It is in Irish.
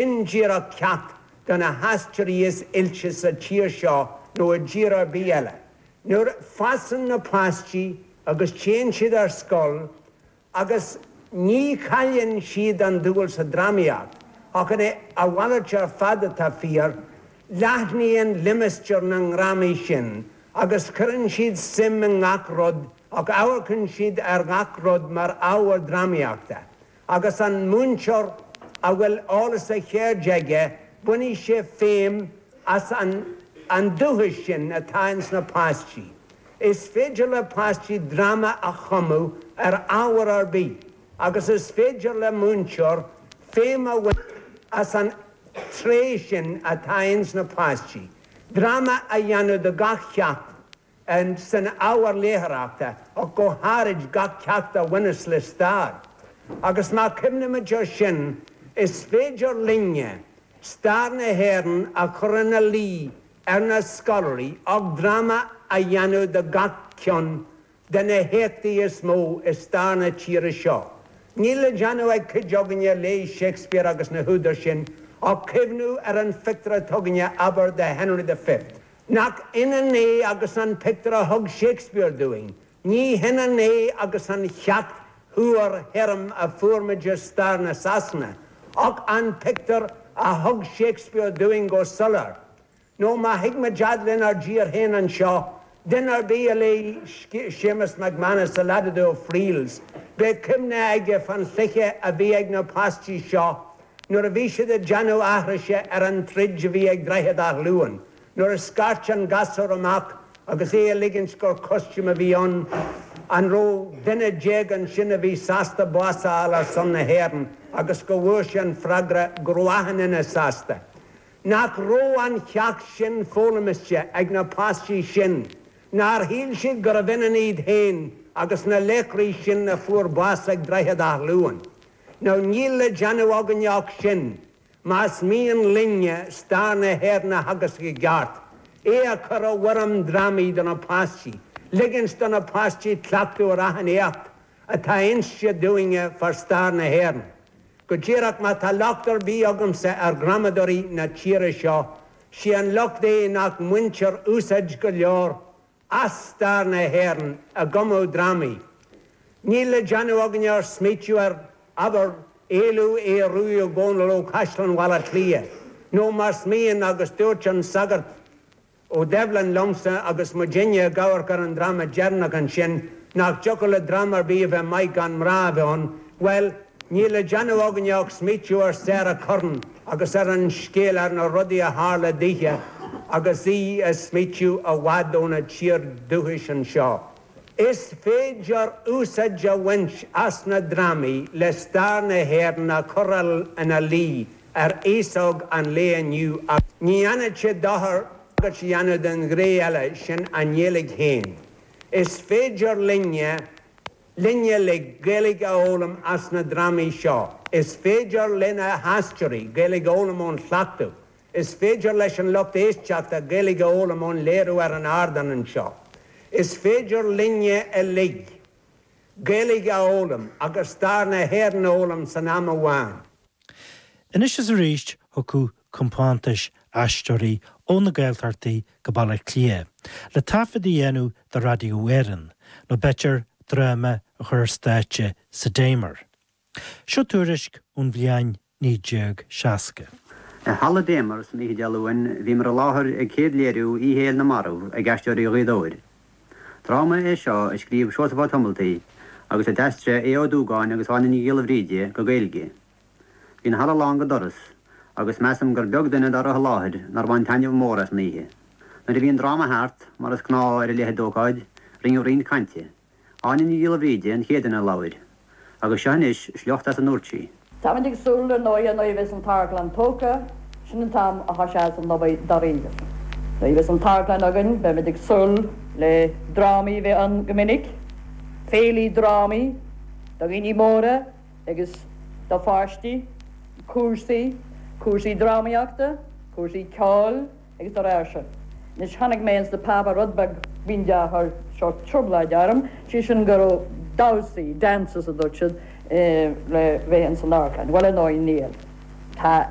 indíreach ceacht do na haisteoirí is oilte sa tír seo nó i dtír ar bith eile. Nuair a fhásann na páistí agus téann siad ar scoil agus ní chailleann siad an dúil sa drámaíocht ach a mhalairt ar fad atá fíor, leathnaíonn limistéar na ndrámaí sin agus cuireann siad suim i ngach rud ach amharcann siad ar gach rud mar ábhar drámaíochta Agus an múinteoir a bhfuil eolas a cheirde aige bainfidh sé feidhm as an dúchas sin atá ins na páistí. Is féidir le páistí dráma a chumadh ar ábhar ar bith agus is féidir le múinteoir feidhm a bhaint as an tréith sin atá ins na páistí, dráma a dhéanamh de gach ceacht ins an ábhar léitheoireachta ach go háirid gach ceacht a bhaineas le stair. Agus má chuimhnímid ar sin, is féidir linne stair na hÉireann a chur ina luí ar na scoláirí ach dráma a dhéanamh de gach ceann de na héachtaí is mó i stair na tíre seo. Níl le déanamh ag cuid againne a léigh Shakespeare agus na húdair sin ach cuimhniú ar an phictiúr a tá againne abair de Henry the Fifth. Nach ionann é agus an pictiúr a thug Shakespeare dúinn? Ní hionann é agus an cheacht fhuar thirim a fuair muid i stair na Sasana, ach an pictiúr a thug Shakespeare dúinn go soiléir. Nó má thig muid a fhad lenár dtír féin anseo, duine ar bith a léigh Séamus McManus A Lad of the O'Friels, beidh cuimhne aige fán chluiche a bhí ag na páistí seo, Nuair a bhí siad ag déanamh aithrise ar an troid a bhí ag Droichead Áth Luain, nuair a scairt an gasúr amach agus é a ligint gur Custume a bhí ann, an raibh duine déag ansin a bhí sásta bás a fháil ar son na hÉireann agus go bhfuair sé an freagra go raibh achan duine sásta? Nach raibh an cheacht sin foghlaimiste ag na páistí sin? Nár shíl siad gurbh ionann iad féin agus na laochraí sin a fuair bás ag Droichead Áth Luain? Nó níl le déanamh againne ach sin, más mian linne stair na hÉireann a theagasc i gceart, é a chur i bhfoirm drámaí do na páistí, ligint do na páistí cleachtú ar achan éacht atá inste dúinne fá stair na hÉireann. Go díreach má tá locht ar bith agamsa ar dhrámadóirí na tíre seo, 'sí an locht é nach mbaintear úsáid go leor as stair na hÉireann i gcumadh drámaí. Níl le déanamh againne ach smaoitiú ar, abair, éalú Aodha Ruaidh Ó Dónaill ó Chaisleán Bhaile Átha Cliath, nó más mian Agus dúirt an sagart Ó Doibhlin liomsa agus muidinne ag amharc ar an dráma deireanach ansin nach dtiocfadh le dráma ar bith a bheith maith gan mná a bheith ann, bhuel, Níl le déanamh againne ach smaoitiú ar Sarah Curran agus ar an scéal ar na rudaí a tharla daoithe agus í ag smaoitiú i bhfad óna tír dúchais anseo. Is féidir úsáid a bhaint as na drámaí le stair na hÉireann a chur ina luí ar aos óg an lae inniu agus ní dhéanfaidh sé dochar tagairt a dhéanamh don ghné eile sin an Ghaeilge féin. Is féidir linne linne uilig Gaeilge a fhoghlaim as na drámaí seo. Is féidir le na haisteoirí Gaeilge a fhoghlaim ón chleachtadh. Is féidir leis an lucht éisteachta Gaeilge a fhoghlaim ón léiriú ar an ardán anseo. Is féidir linne uilig Gaeilge a fhoghlaim agus stair na hÉireann a fhoghlaim san am amháin. Anois is arís, thiocfadh compántais aisteoirí ó na Gaeltachtaí go Baile Átha Cliath le taifead a dhéanamh do Raidió Éireann, nó b'fhéidir, dráma a chur ar stáitse sa Damer. Seo tuairisc ón bhliain 1960. I Halla Damer san oíche Dé Luain bhíomar i láthair ag céad léiriú Oíche Fhéil na Marbh ag Aisteoirí Ghaoth Dobhair. Dráma é seo a scríobh Seosamh Ó Tomaltaigh agus a d'aistrigh Aodh Ó Dúgáin agus Áine Nic Giolla Bhríde go Gaeilge. Bhí an halla lán go doras, agus measaim gur beag duine dá raibh i láthair nár bhain taitneamh mór as an oíche. Nuair a bhí an dráma thart, mar is gnáth ar a leithéid d'ócáid, rinneadh roinnt cainte. Áine Nic Giolla Bhríde an chéad duine a labhair. Agus seo anois sliocht as a ndúirt sí. Táimid ag súil ar ndóigh nuair a bheas an t-amharclann tógtha, sin an t-am a thosós an obair dáiríre. Nuair a bheas an t-amharclann againn beimid ag súil le drámaí a bheith ann go minic, féilí drámaí do dhaoine móra, agus do pháistí, cúrsaí, cúrsaí drámaíochta, cúrsaí ceoil agus dá réir sin. Anois, chonaic mé ins na páipéir rud beag amháin a chuir sórt trioblóid orm, sé sin go raibh damhsaí, dances a dúirt siad, le bheith ins an amharclann. Bhuel ar ndóigh níl. Tá.